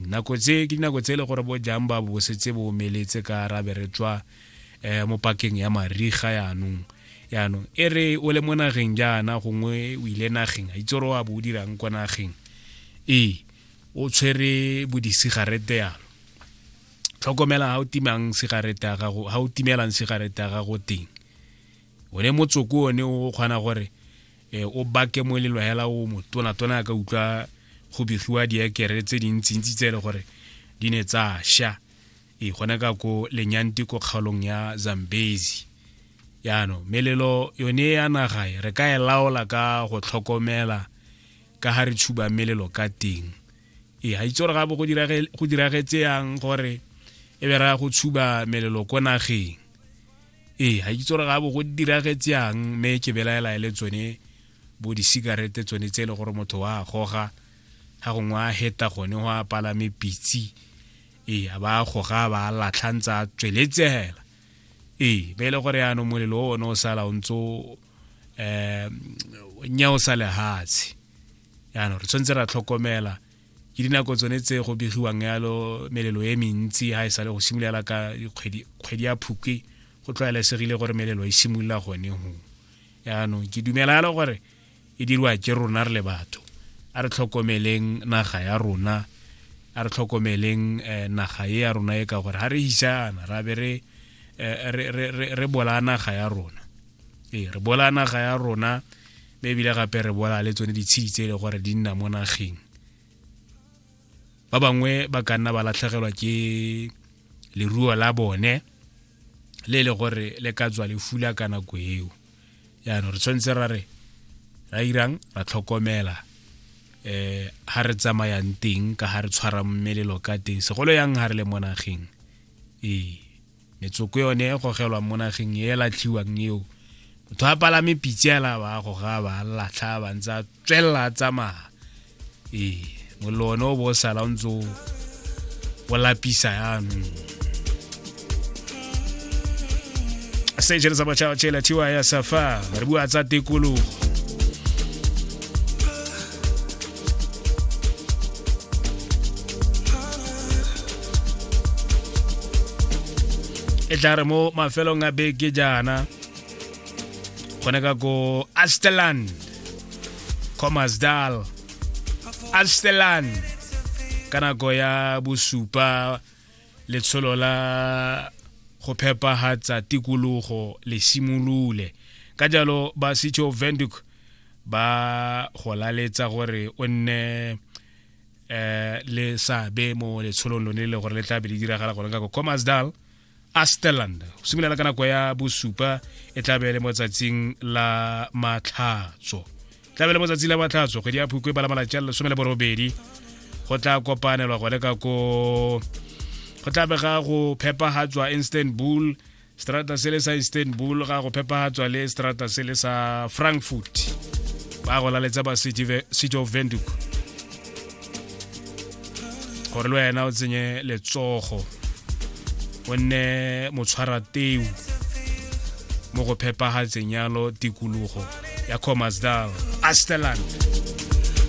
nako tse ke dinako tse e le gore bo jang ba bo setse bo omeletse ka rabe re tswa um mo pakeng ya mariga yaanong yaanong e re o le mo nageng jaana gongwe o ile nageng a itse gore wa bo o dirang kwa nageng ee o tshwere bodisigarete yalo tlhokomela ga o timang sigarete ya gago ga o timelang sigarete ya gago teng one motsoko one o kgona gore e, o bake mo e leng hela o motona tona a ka utlwa go begiwa diekere tse dintsintsi tse e le gore di ne tsa sha e gone ka ko lenyanti ko kgaolong ya zambezi yaanong melelo yone ya naga e, re ka e laola ka go tlhokomela ka ga re tshuba melelo ka teng e ga itse gore gape go diragetse yang gore e be raya go tshuba melelo ko nageng ee ga ke itse gore ga bo go diragetse yang mme ke belaela e le tsone bo di-cigarete tsone tse e le gore motho wa goga ga gongwe a heta gone go a palame pitsi ee a ba goga ba latlha ntse a tsweletsegela ee be e le gore yaanong molelo o one o sala o ntse um nya o sa lehatshe yaanong re tshwanetse ra tlhokomela ke dinako tsone tse go begiwang yalo melelo e mentsi ha e sale go simolola ka kgwedi ya phukwe go tlwaelesegile gore melelo e simolola gone go yaanong ke dumela yalo gore e diriwa ke rona re le batho a re tlhokomeleng naga ya rona a re tlhokomeleng eh, naga e ya rona e ka gore ha re hisana ra be re eh, re bola naga ya rona ee re bola naga ya rona mme ebile gape re bola le tsone ditshedi tse e le gore di nna mo nageng ba bangwe ba ka nna ba latlhegelwa ke leruo la bone le e le gore le ka tswa le fula ka nako eo jaanong re tshwanetse ra re ra irang ra tlhokomela eh ha re tsamayang teng ka ha re tshwara mmelelo ka teng segolo yang ha re le mo nageng ee metsoko yone e gogelwa mo nageng e latlhiwang eo motho a palame pitse ela ba goga ba latlha ba ntse a tswelela a tsamaya ee mollo one o bo o sala o ntse o lapisa yanong sejele sa batšhaba tšela thiwa ya safa re bua tsa tekologo e tla re mo mafelong a beke jaana gone ka ko asteland comasdal asteland ka nako ya bosupa letsholo la go phepagatsa tikologo le simolole ka jalo ba setsho venduk ba go laletsa gore o nne eh le sabe mo letsholong lone le gore le tla be le diragala gone ka ko comasdal asterland go simolola ka nako ya bosupa e tla be le mo tsatsing la matlhatso tlabe le motsatsi la matlhatso kgwedi ya phukwe bala malatsi a le lesome le borobedi go tla kopanelwa gone ka ko go tla bega go phepagatswa istanbul strata se le sa istanbul ga go phepagatswa le strata se le sa frankfurt ba go laletsa ba city of venduk gore le wena o tsenye letsogo o nne motshwara teu mo go phepagatseng yalo tikologo ya comasdal asteland